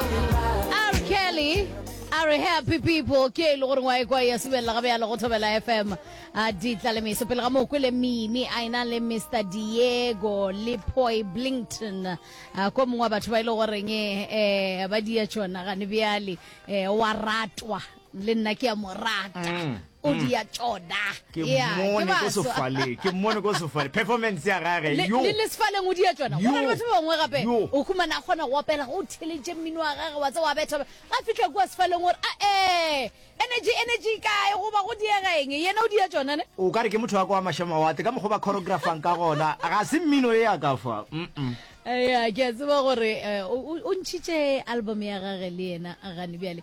R. Kelly a re happy people ke e le gore ngwae kwa ya subelela gabe ya le go thobela fm a di tla le meso pele ga moo kwele mimi a ena le mr diego le poi blington a ko mongwe wa batho ba e le goreng um ba dia tšona gane bjale um wa ratwa le nna ke a mo rata mm, o mm. dia tšona ke mone ko sefaleng ke mone ko sefaleng performance ya gage yo le sefaleng o dia tšona go na le batho ba bangwe gape o khumana kgona go opela go theletše mmino wa gage wa tse wa betha ga fitlha kwa sefaleng gore a e energy energy kae goba go diegeng yena o dia tšona ne o ka re ke motho wa kwa mašamawate ka mokgwa ba choreographang ka gona ga se mmino e ya ka fa ya ke a tseba gore eh, o ntšhitše album ya gage le yena gane bjale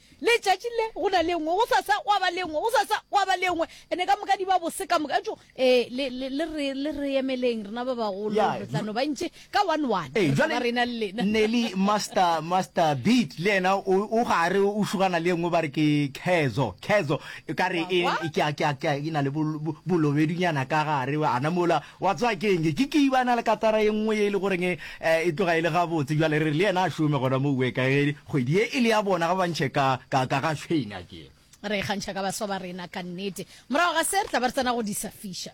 Letšatši le, go na le engwe, gosasa gwa ba le engwe, gosasa gwa ba le engwe, ene ka moka di ba bose ka moka. Ejo, ee, le, le, le re, le re emeleng, rena ba bagolo, Yeah, re tla no ba ntši ka one-one, Ee, re tla ba jwale, rena le lena. Nelly, Master, Master Beat, le yena o, o gare, o šugana le engwe, ba re ke Khezho, Khezho, e ka re Wa e, kwa? e, ke a, ke a, ke a, e na le bol, bo, bolobedunyana ka gare, ana mola. Wa tseba ke eng? Ke keibana le katara ye nngwe ye e le goreng e tloga e le gabotse. Bjale re re le yena a šome gona moo weka ge kgwedi ye e le ya bona, ga ba ntšhe ka, ka, ka ga Shane akere. Re ikgantšha ka baswa ba rena ka nnete. Morago ga se, re tla ba re tsena go disafiša.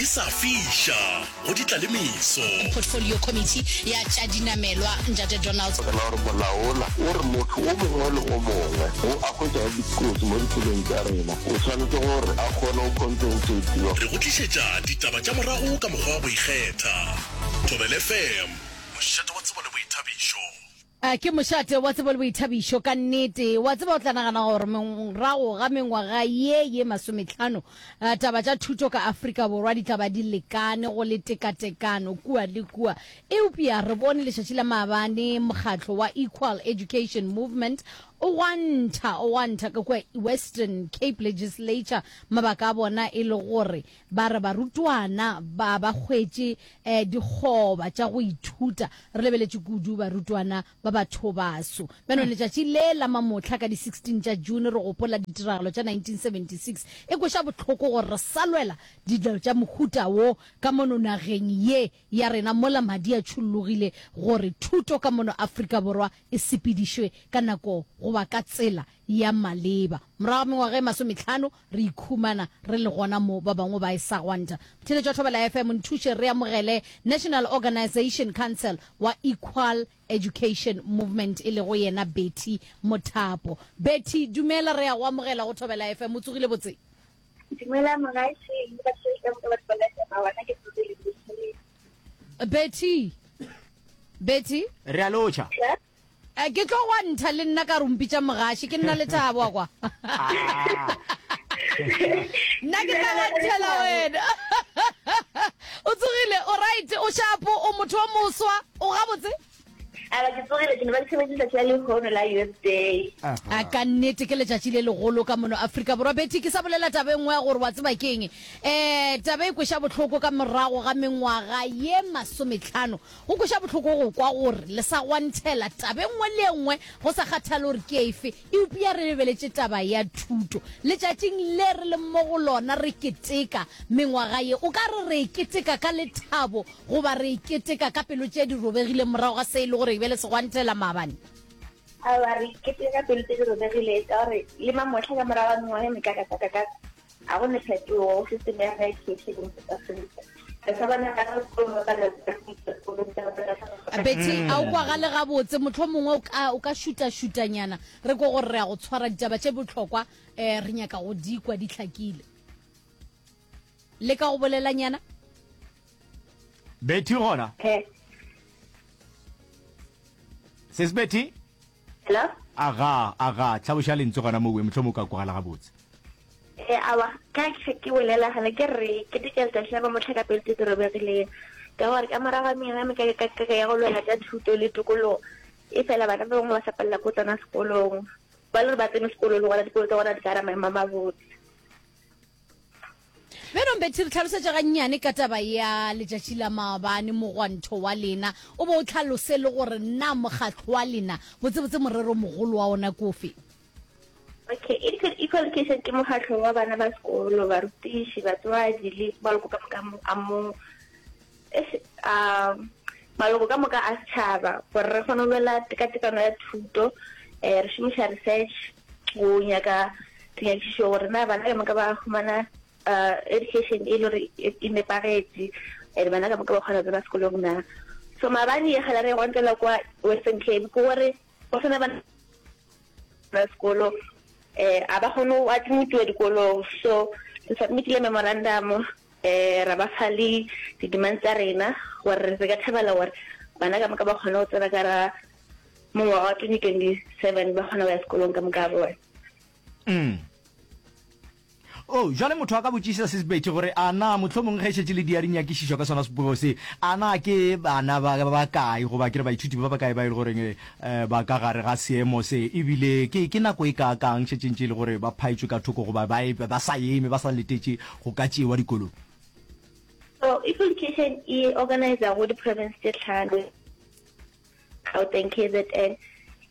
di sa fiša go di tlalemiso portfolio committee ya tša dinamelwa ntate donald ka gore molaola o re motho o mongwe le o mongwe o a hwetšago dikotsi mo dipelong tša rena o tshwanetse gore a kgone go compensatiwa re go tlišetša ditaba tša morago ka mokgwa wa go ikgetha thobelefm mošate wa tsebo le boithabišo Ke mošate wa tsebo le boithabišo. Ka nnete, wa tseba, o tla nagana gore morago ga mengwaga ye ye masometlhano, taba tša thuto ka Afrika Borwa di tla ba di lekane go le tekatekano kua le kua. Eupša re bone letšatši la maabane mokgatlo wa Equal Education Movement o gwantha, o gwantha ka kua Western Cape Legislature, mabaka a bona e le gore Ba re barutwana ba ba hwetše eh, dikgoba tša go ithuta. Re lebeletše kudu barutwana ba bathobaso. Beno, letšatši le la mamohla ka di 16 tša June re gopola ditiragalo tša 1976. E kweša bohloko gore re sa lwela dilo tša mohuta wo ka mono nageng ye ya rena mola madi a tšhollogile gore thuto ka mono Afrika Borwa e sepedišwe ka nako goba ka tsela ya maleba. Morago ga mengwaga e masometlhano, Re ikhumana re le gona mo ba bangwe ba e sa gwanta. Theeletšo ya Thobela FM, nthuše re amogele National Organization Council wa Equal Education Movement e lego yena Betty Mothapo. Betty, dumela, re a go amogela go Thobela FM. O tsogile botse? Dumela mogaešeng le batho ba itšego ka ba Thobela FM, gona ke tsogile botse. Betty? Betty? Re a lotšha. Sure. Eh, ke tlo gwa ntha le nna ka rumpi tša mogaši ke nna lethabo a kwa nna ke tla gantšhela wena o tsogile o right o shapo o motho wa moswa o gabotse aba ke tsogile ke ne ba tshebetse letsatsi la lehono la youth day a ka nnete ke letšatši le legolo ka mono aforika borwa betty ke sa bolela taba e nngwe ya gore wa tseba keng um taba e kweša bohloko ka morago ga mengwaga ye masometlhano Go kweša bohloko go kwa gore le sa gwanthela taba e nngwe le e nngwe go sa kgathale gore ke efe, eupša re lebeletše taba ya thuto. Letšatšing le re leng mo go lona re keteka mengwaga ye, o ka re re e keteka ka lethabo goba re e keteka ka pelo tše di robegileng morago ga se e le gore e be le segwanthela maabane? Aowa, re e keteka ka pelo tše di robegileng ka gore le mamohla ka morago ga mengwaga e mekakakakaka, A go ne phetogo go se ne ga ikheše go se tsafelisa. Re sa bana ga re tlo mo kana tsa go itse go le tsa bana ga re. Betty, a o kwa gale ga botse motlho mongwe o ka o ka šuta šuta nyana re ko gore re ya go tshwara ditaba tše botlhokwa eh re nyaka go di kwa di tlhakile. Le ka go bolela nyana. Betty gona. He. Sis Betty. Hello? Aga, aga, tlhaloša lentswe gona mowe, mohlomong o ka kwagala gabotse. E, awa, ka ke ke bolela gana, ke re, ke dika letšatši la ba mohla ka pele tse di robegileng. Ka gore ka morago ga mengame ka ka ka ya go lwela tša thuto le tokologo, e fela bana ba bangwe ba sa palela ko tsena sekolong. Ba le gore ba tsene sekolo le gona dikolo tsa gona di ka ra maemo a mabotse. beno mbethe re tlhalosetša gannyane ka taba ya letšatši la maabane mogwanto wa lena o be o tlhalose le gore na mokgatlho wa lena botsebotse morero mogolo wa ona kofe okay equal education ke mokgatlho wa bana ba sekolo barutiši batswadi le ba loko ka moka a mo Eish, a maloko ka moka a setšhaba gore re kgone go lwela tekatekano ya thuto um re šomiša research go nyaka dinyakišišo gore na bana ka moka ba humana um education e le gore e, e nepagetše and bana ka moka ba kgona go tsena sekolong na so maabane ye gala re e gontlela kwa western cape ke gore go sena bana ba sekolo um a ba kgone go admitiwa dikolong so re submitile memorandum um ra ba fa le di-demands tsa rena gore re ka thabela gore bana ka moka ba kgone go tsena ka ra mongwaga wa 2027 ba kgona go ya sekolong ka moka bone mm. Oo, bjale motho a ka botšišiša se sepetše, gore, A na, mohlomong ge e šetše le diari nyakišišo ka sona Sepogigo se, a na ke bana ba, ba bakae, goba ke re baithuti ba bakae ba e lego reng, e, ba ka gare ga seemo se, e bile ke, ke nako e kaakang šetše ntše e le gore ba phaetšwe ka thoko, goba ba, e, ba sa eme, ba sa letetše go ka tšewa dikolong? So, Equal Education e organiza go di-province tše hlano. Gauteng, kzn,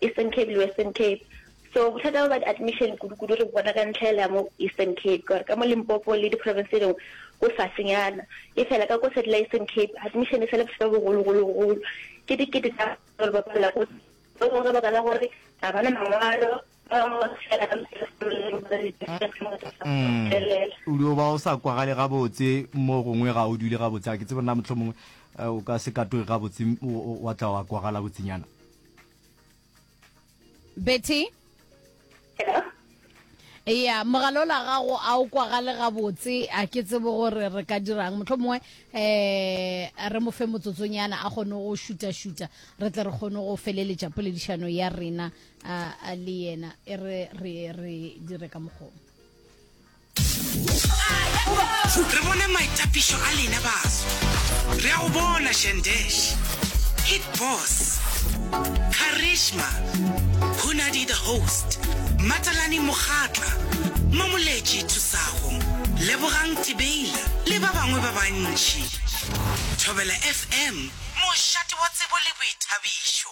Eastern Cape le Western Cape. So bothata ba admission kudu-kudu re bona ka ntlhaela mo Eastern Cape, gore ka mo Limpopo le di-province tse dingwe go fasenyana. E fela ka ko Satellite Eastern Cape, admission e sale bothata bo bogolo-golo-golo. Ke dikete tsa gore ba palela ko, ba bangwe ka baka la gore ga bana mangwalo, Mm. o dio ba o sa kwagale gabotse mo gongwe ga o dule gabotse a ke tsebe nna motlho mongwe eh, o ka se katoge gabotse m- o- o- wa tla wa kwagala botsenyana betty ya mogala ola gago a o kwagale gabotse a ke tsebe gore re ka dirang motlho mongwe um re mo fe motsotsonyana a kgone go šuta-šuta re tle re kgone go feleletša poledišano ya rena a a le yena e re re re dire ka mokgong re bone maitapišo a lena baso re a go bona shandesh hit boss charisma hunadi the host matalani mogatla mamoletši thusago lebogang tibeila le ba bangwe ba bantši thobela fm mošate wa tsebo le boithabišo